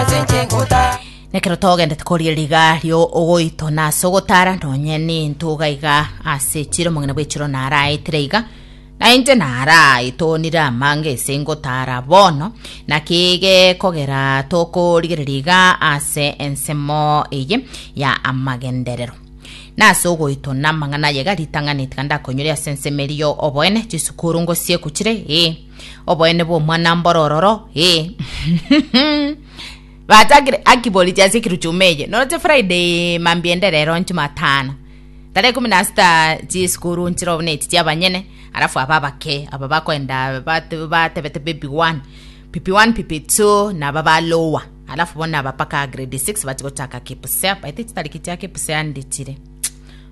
ase inche nkota. Nekero togendete koria riga rio ogoito na ase ogotara nonye nintuga iga ase chire omong'ina bw'echiro naraetire iga na inche naraitonire amanga ese ngotara bono naki gekogera tokorigereria iga ase ensemo eye ya amagenderero na ase ogoito na amang'ana aye iga ritang'ani tiga ndakoinyore ase ensemo eria yo oboene chisukuru ngosiekuchire ee Oboene bw'Omwana-mboro ororo, ee. Batagire aki borichi ase ekiru chuma eye. Noroche Friday mambia ende rero Jumatano. Tarehe kumi na sita chisukuru nchire obo neti chiabanyene, alafu aba abake aba bakoenda bate- batebete baby one pipi one pipi two naba ba lower alafu bono naba mpaka grade six bachi gochaka kipsea baete chitariki chia kipsea ndichire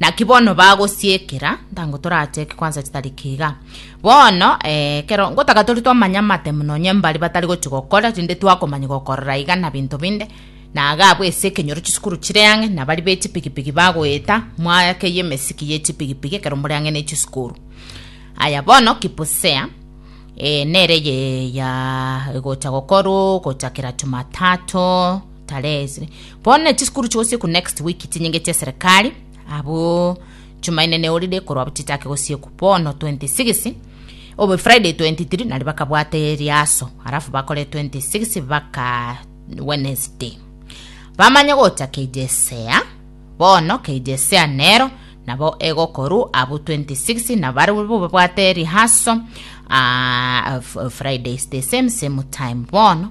Naki bono bagosiekera, ntango toracheeke kwansa chitariki iga. Bono, eh, ekero ngotaka tore twamanya amatemu nonye mbare batari gochi gokora, rinde twakomanya gokorora iga na binto binde, na iga abwo ase ekenyoro chisukuru chire ang'e, na bari be chipigipigi bagoeta mwake y'emesiki ye chipigipigi ekero more ang'e ne chisukuru. Aya bono Kipusea, eh, nere ye ya gocha gokorwa gochakera Jumatatu, Tarehe isire bono ne chisukuru chigosikwa next week chinyinge chia serikali abwo Jumaine ne holiday korwa abwo chichake gosikwa bono 26 obo Friday 23 nari bakabwata eriaso alafu bakore 26 baka Wednesday bamanye gocha keijesea bono keijesea nero nabo egokorwa abwo 26 na bari bo babwate eriaso ah, f- Fridays the same same time bono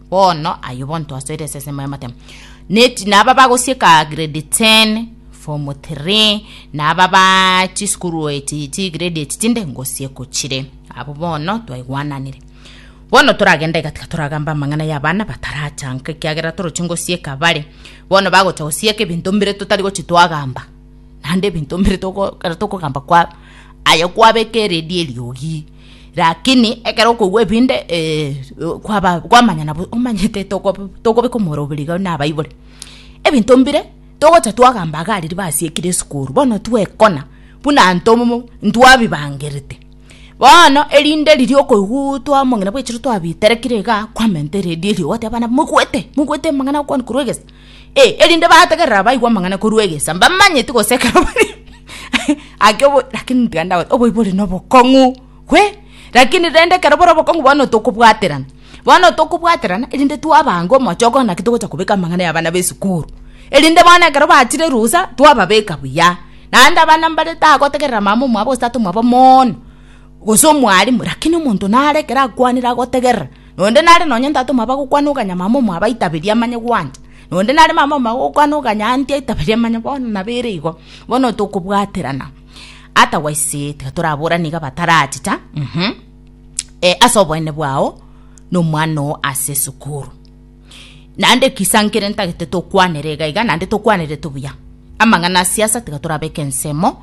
Bono ayio bonto asoire esesemo y'amatemo. Neti naba bagosieka grade 10 form 3 naba ba chisukuru eti chi grade eti chinde ngosieko chire abo bono twaigwananire bono toragenda igatika toragamba amang'ana y'abana batarachanka ekiagera toroche ngosieka bare bono bagocha gosieka ebinto mbire totari gochi twagamba naende ebinto mbire togo ekero tokogamba kwa aye kwabeka eredi eriogi Rakini ekero okogwa ebinde eh, kwaba kwamanya nabo omanyete tokob- tokobeka omoroberi iga na abaibori. Ebinto mbire togocha twagamba iga aria basiekire esukuru, bono twekona buna ntomo ntwabibangerete. Bono erinde riria okoigwa twamong'ina bwechire twabiterekire iga, kwamenta eredio erio ogoteba abana moigwete, moigwete amang'ana agokoanwa korwa egesa. Eh, erinde bagategerera abaigwa amang'ana korwa egesa, mbamanyeti gose ekero bari ake obo lakini tiga ndagote oboibi ore na obokong'u hwe lakini rende ekero bore obokong'u bono tokobwaterana bono tokobwaterana erinde twabange omochoko ng'a naki togocha kobeka amang'ana ya abana ba esukuru erinde bono ekero bachire rusa twababeka buya naende abana mbare tagotegerera mama omwabo gose tata omwabo mooono gose omwalimu lakini omonto nare ekero akwanire agotegerera. Nonde nare nonya ntatoma abagokwana oganyamama omwabo aitaberie amanye gwancha, nonde nare mama omwabo ogokwana oganyanti aitaberie amanye bono nabo ere igo, bono tokobwaterana otherwise tiga toraborane iga batarachicha ase oboene bwao na omwana oo ase esukuru. Naende kisa nkere ntagete tokwanere iga iga naende tokwanerete buya. Amang'ana a siasa tiga torabeke ensemo,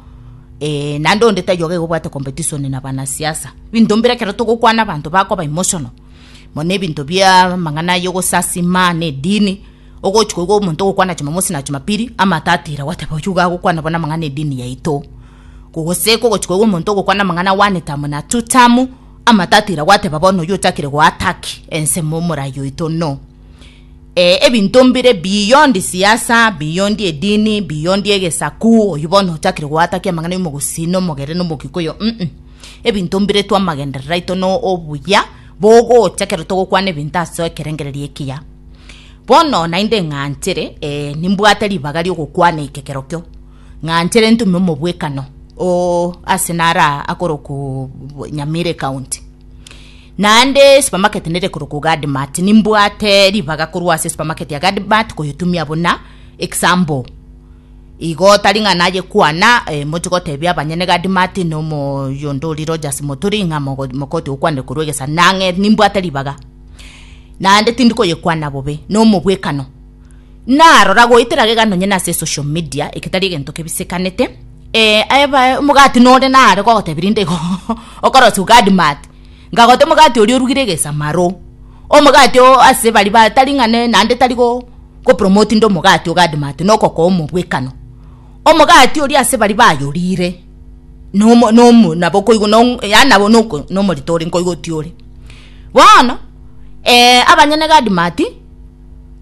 eh, naende onde taiyo iga iga obwate competition na banasiasa. Binto mbire ekero togokwana abanto bakoba emotional, muna ebinto bia amang'ana aya ogosasima na edini, ogochi koigwa omonto ogokwana jumamosi na jumapili, amato atira gwateba oyio iga agokwana bono amang'ana edini yaito, gose kogochi koigwa omonto ogokwana amang'ana one term na two term, Amatatira gwateba bono oyio ochakire goattack ensemo omorai oito no eh ebinto mbire beyond siasa beyond edini beyond egesaku oyio bono ochakire goattack amang'ana ya omogusii na omogere na omogikuyu mm ebinto mbire twa amagenderero aito na obuya bogocha ekero togokwana ebinto ase ekerengererio ekiya bono naende ng'anchere eh nimbwate ribaga riogokwana ekekero kio. Ng'anchere ntume omobwekano oo ase nara akoroku Nyamire County. Naende supermarket nere koroku Gadmart nimbwate ribaga korwa ase supermarket ya Gadmart koyotumia buna example. Igo tari ng'a naye kwana eh, moche gotebia abanyene Gadmart nomo yonde ori Rogers Moturi ng'a mogo mokoti okwanire korwa egesa nang'e nimbwate ribaga. Naende tindi koyekwana bobe nomobwekano. Narora goetera gega nonye nase esocial media, egetari egento kebisekanete, eh aebae omogati nore nare gogotebi rinde igo okorosia ogadi mate, nkagote omogati oria orugire egesamaro, omogati oo ase bari ba tari ng'a ne naende tari go gopromote inde omogati ogadi mate nokokoa omobwekano. Omogati oria ase bari bayorire nomo nomo nabo koigwa nong yaani nabo noko nomorito ore nkoigwa otiore. Bono eh abanyene gadi mati.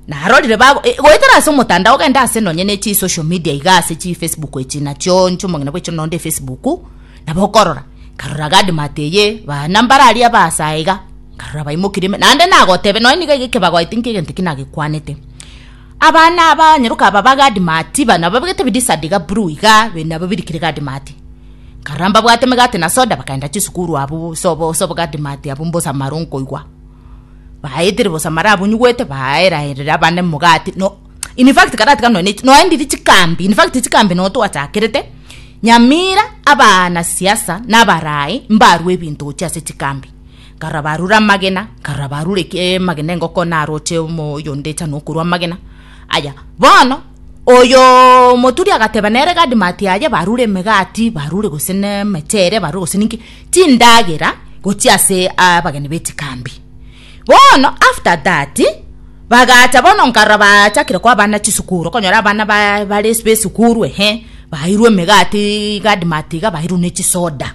narorire bago eh, goetera ase omotandao ogende ase nonye ne chi social media iga ase chi facebook echi nachio nchi omong'ina bwecho nonde facebook nabo okorora karora gadmat eye bana mbarari abasa iga karora baimokire ime- naende nagotebe nonye niga iga kebagoete nki egento ki nagekwanete abana aba nyeroka aba ba gadmat bana babegete bidisad iga blue iga be- nabo birikire gadmat karora mbabwate emegate na soda bakaenda chisukuru abwo sobo sobo gadmat abwo mbosa maro nkoigwa baetire bosa marabunyugwete baeraerere abande mogati no in fact karatiga nonya nonya ndiri chikambi in fact chikambi no twachakerete nyamira abana siasa nabarai mbarwe ebinto gochia ase chikambi nkarora barure amagena nkarora barure ki amagena engoko naroche omo oyonde echa nokorwa amagena aya bono oyoo moturi agateba nere gadi mati aye barure emegati barure gose ne emechere barure gose ninki. chindagera gochia ase abageni be chikambi. Bono after that bagacha bono nkarora bachakire koa abana chisukuru okonyora abana ba bare besukuru ehe bairwe emegati iga admart iga bairwe ne chisoda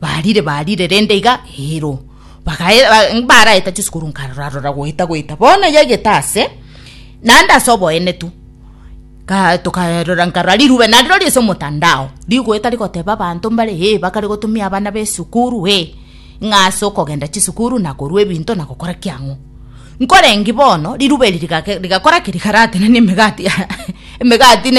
barire barire rende iga eero bagae ba mbaraeta chisukuru nkarora rora goeta goeta bono yagete ase naende ase oboenetu. Kaa tokarora nkara rirube nariro riase omotandao, rigoeta rigoteba abanto mbare, ee, bakare gotumia abana b'esukuru, ee, ng'a ase okogenda chisukuru na korua ebinto na gokora ki ang'o. Nkorenge bono, rirube eri rigake rigakora ki? Rigaratenena emegati emegati ne.